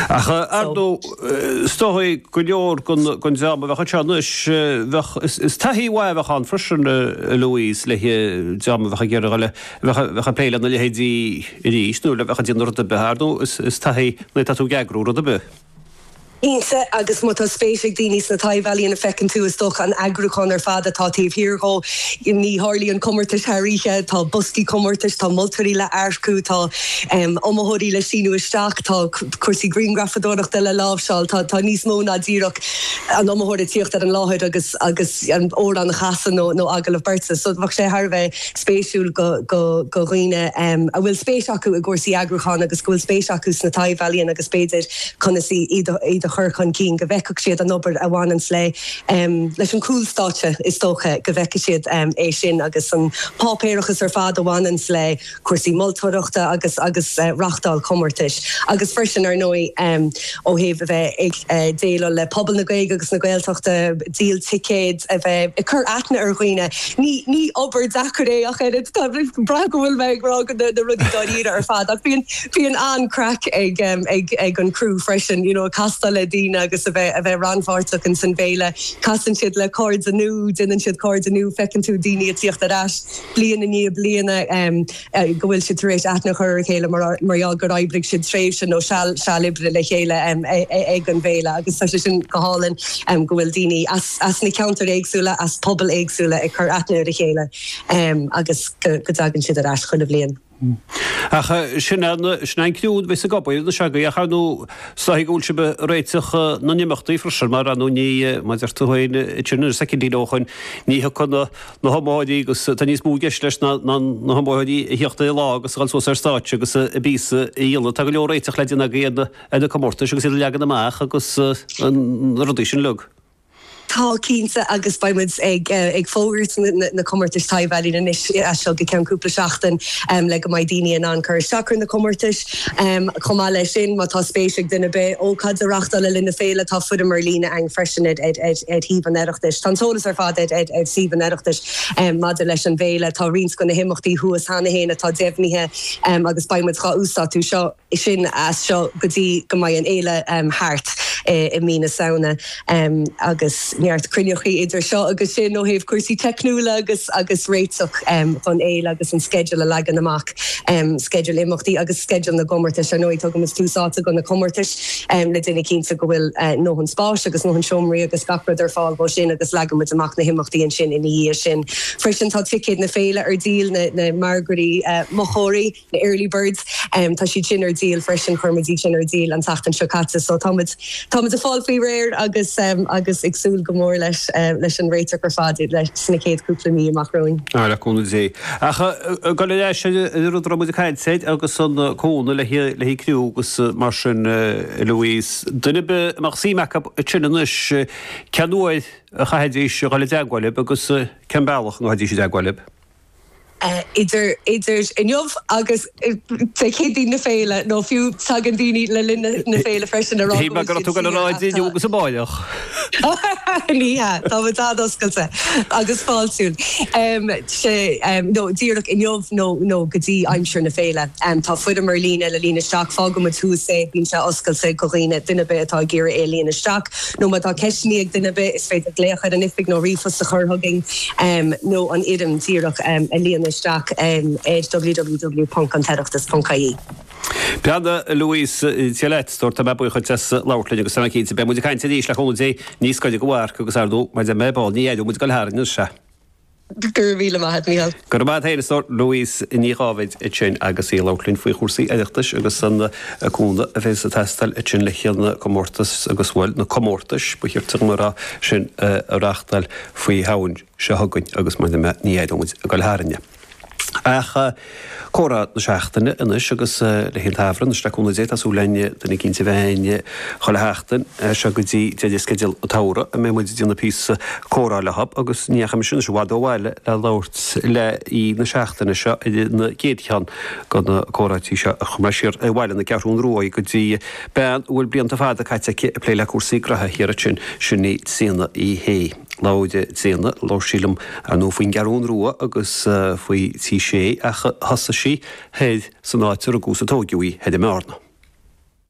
Ach ar ndóigh, is dóigh go leor den dream a bheadh anseo anois, is taithí mhaith a bheadh ann freisin, a Louise, le dream a bheadh ag iarraidh a bheith ag plé lena leithéidí arís nó a bheadh ag déanamh rud ar bith. Ar ndóigh, is taithí nuair atá tú ag eagrú rud ar bith. Cinnte, agus má tá spéis ag daoine sna taibh-ealaíona, feiceann tú, is dócha, an eagrúchán ar fad atá taobh thiar dhó. Ní tharlaíonn comórtais thar oíche, tá boscaí comórtais, tá moltóirí le hearcú, tá. iomaitheoirí le síniú isteach, tá cúrsaí griangrafadóireachta le láimhseáil, tá níos mó ná díreach an iomaitheoir a thíocht ar an láthair agus an amhrán a chasadh nó agallamh beirte. So bheadh sé thar a bheith spéisiúil do dhaoine a bhfuil spéis acu i gcúrsaí eagrúcháin agus go bhfuil spéis acu sna taibh-ealaíona agus b'fhéidir conas iad a chur chun cinn, go bhfeicfeadh siad an obair a bhaineanns leis an gcúlstáitse is dócha, go bhfeicfeadh siad é sin agus an páipéarachas ar fad a bhaineanns le. cúrsaí moltóireachta agus agus reáchtáil comórtais agus freisin ar ndóigh ó thaobh a bheith ag déileáil le pobal na Gaeilge agus na Gaeltachta, díol ticéad, a bheith ag cur aithne ar dhaoine. Ní ní obair deacair é ach oiread. B'fhéidir go bhfuil mé ag rá na rudaí dáiríre ar fad ach bíonn bíonn an-craic ag ag ag an crew freisin you know castáil le daoine agus a bheith a bheith rannpháirteach insan bhféile. Casann siad le cairde nua, déanann siad cairde nua, feiceann tú daoine a' tíocht ar ais. bliain i ndiaidh bliana, go bhfuil siad tar éis aithne a chur ar a chéile mar gheall gur oibrigh siad tréimhse nó seal seal oibre le chéile ag an bhféile agus tá sé sin go hálainn go bhfuil daoine as na ceantair éagsúla, as pobail éagsúla ag cur aithne ar a chéile agus go dtagann siad ar ais chuile bhliain. Ach sin an criú a bheas ag obair ann agus chomh maith is dóigh go bhfuil sibh ag réiteach na n-imeachtaí freisin, mar anú ní mar deir tú féin idir nuair soicindí leo chun ní thiocfaidh na hiomaitheoirí agus tá níos mó i gceist leis ná na hiomaitheoirí a thíocht ar an lá agus a dul suas ar stáitse agus a bpíosa a dhéanamh. Tá go leor réiteach le déanamh ag na comórtais agus iad a leagan amach agus na rudaí sin uilig. Tá, cinnte, agus beidh muid ag fógairt na comórtais taibh-ealaíon anois as seo go ceann cúpla seachtain le go mbeidh daoine in ann cur isteach ar na comórtais. Chomh maith leis sin, má tá spéis ag duine ar bith ócáid a reáchtáil le linn na féile, tá foirm ar líne ann freisin ar shuíomh an Oireachtais. Tá an t-eolas ar fad ar shuíomh an Oireachtais maidir leis an bhféile. Tá roinnt de na himeachtaí thuas cheana féin atá deimhnithe agus beidh muid dhá uasdátú seo. sin as seo go dtí go mbeidh an fhéile thart i mí na Samhna agus neart cruinneachaí idir seo agus sin ó thaobh cúrsaí teicniúla agus réiteach don fhéile agus an sceideal a leagan amach, sceideal imeachtaí agus sceideal na gcomórtais. Ar ndóigh tugann muid tús áite do na comórtais le déanamh cinnte go bhfuil ndóthain spáis agus ndóthain seomraí agus gach rud ar fáil dhóibh sin agus leagann muid amach na himeachtaí ansin ina dhiaidh sin. Freisin tá ticéid na féile ar díol, na margaí mochóirí. na early birds. Tá siad sin ar díol freisin, chuir muid iad sin ar díol an tseachtain seo caite so tá muid, tá muid ag fáil faoi réir agus, agus ag súil go mór leis, leis an réiteach ar fad sna chéad chúpla mí amach romhainn. Tá, le cúnamh Dé. Ach ag dul ar ais ar an rud a raibh muid ag caint air agus an cúnamh le, le haghaidh criú agus mar sin, Louise, duine ar bith a mbeadh suim acu ansin anois, cén uair a chaithfidís a dhul i dteagmháil libh agus cén bealach a ngabhfaidís i dteagmháil libh? idir inniu agus Dé Céadaoin na féile, nó fiú, tagann daoine le linn na féile freisin a rá go bhfuil siad saor ach tá. Ní hea, tá muid an-oscailte agus fáiltiúil. Sea, nó díreach inniu nó go dtí aimsir na féile, tá foirm ar líne le líonadh isteach, fágfaidh muid thuas é, bíonn sé oscailte go dhaoine, duine ar bith atá ag iarraidh é a líonadh isteach. nó má tá ceisteannaí ag duine ar bith is féidir glaoch ar an oifig nó ríomhphost a chur chugainn nó an fhoirm díreach a líonadh isteach ar www.antoireachtas.ie. Peadar, Louise, Dia leat. Dúirt Tá mé buíoch dhuit as labhairt linn agus tá mé cinnte beidh muid ag caint arís le cúnamh Dé níos gaire don mharc agus ar ndóigh mar a dúirt mé ar ball ní aireoidh muid ag dul tharainn anois é. Go raibh míle maith a'd, Mícheál. Go raibh maith a'd féin a stór. Louise Ní Dháibhéid ansin agus í ag labhairt linn faoi chúrsaí Oireachtais agus an cúnamh a bhéas ag teastáil ansin le chéile na comórtais agus, bhuel, na comórtais, ba chirte dhom a rá, sin a reáchtáil faoi Shamhain seo chugainn agus mar a deir mé ní aireoidh muid ag goil tharainn é. Comhrá na Seachtaine anois agus le haghaidh an tsamhraidh anois le cúnamh Dé, tá súil againn duine eicínt a bheith againn chuile sheachtain as seo go dtí deireadh sceideal an tsamhraidh a mbeidh muid ag déanamh píosa comhrá leo agus ní dheachaigh mise anois i bhfad ó bhaile le labhairt le aoi na seachtaine seo ar an gcéad cheann de na comhráití seo ach chuaigh mé siar ar bhaile na Ceathrún Ruaidh go dtí bean a bhfuil blianta fada caite aici ag plé le cúrsaí graithe thiar ansin, sin í Tríona Uí Shé. Labhair Tríona, labhair sí liom ar ndóigh faoin gCeathrún Rua agus faoi Tigh Sé ach thosaigh sí thoir san áit a rugadh is a tóigeadh í, thoir i mBearna.